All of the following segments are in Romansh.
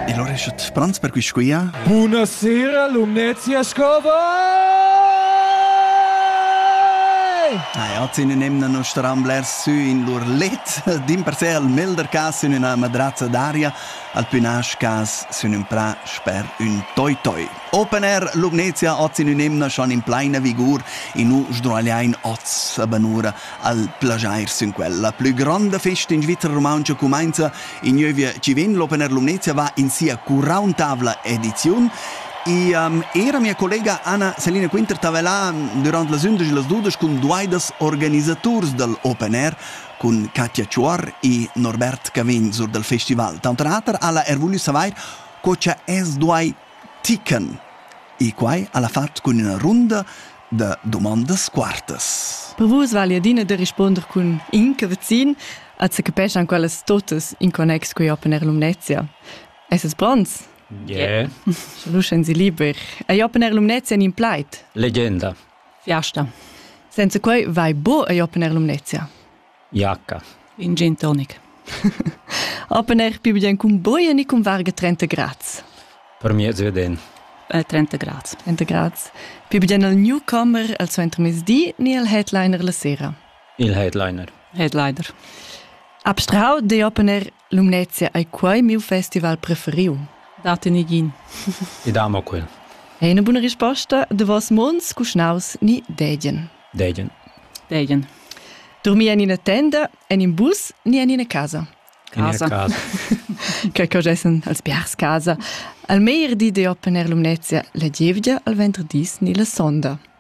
E lora esce pronts per quisquia? Buonasera, Lumnezia Scover! Ah ja, zine nemna no staran blers sü in lur let, din per se al melder cas sün üna madrazza d'aria, al pü nasch cas sün ün prà sper ün toi-toi. Open Air Lumnezia oz in ün emna schon in pleina vigur, in nu sdruagliain oz a banura Al plaschair sün quel. La plü gronda festa in Svizra rumauntscha cumainza ignuövia chi vegn l'Opener Lumnezia va in sia quarauntavla ediziun E um, era mia collega Anna Selina Quinter stava là durant las undisch e las dudesch cun duaidas organisaturs dal Open Air cun Katja Chuor e Norbert Cavegn sur dal festival. Tanter auter ha la er voulu savair co cha es duai tican. E quai al ha fat cun üna runda da domandas quartas. Per vus vali adina da risponder cun in che vecin als che capeschan quellas totas in connex con Open Air Lumnezia. Esses pronts? Yeah. Sche luschen si liber. Ei Open Air Lumnezia in plaid? Legenda. Fiasta. Senza quei vai buca ei Open Air Lumnezia. Jacca. In gen tonic. Open Air pubien cun boia ni cun varga 30 grads. Per mi è veden. Äh, 30 grads. 30 grads. Pubien al newcomer al suenter mezdi ni al headliner la sera. Il headliner. Headliner. Abstrahau de Open Air Lumnezia ei quei miu festival preferiu. Date negin. Ed amo quel. Ei ina buna risposta, davos mons cuschnaus ni degien? Degien. Degien. Durmir en ina tenda, en in bus ni en ina casa? In ina casa. Quei che gessen als biars casa. Al meir di de opponer Lumnezia la gievgia al ventredis ni la sonda.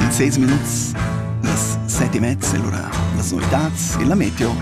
Ils seis minuts, las set e mezza e lura las novitats e la meteo.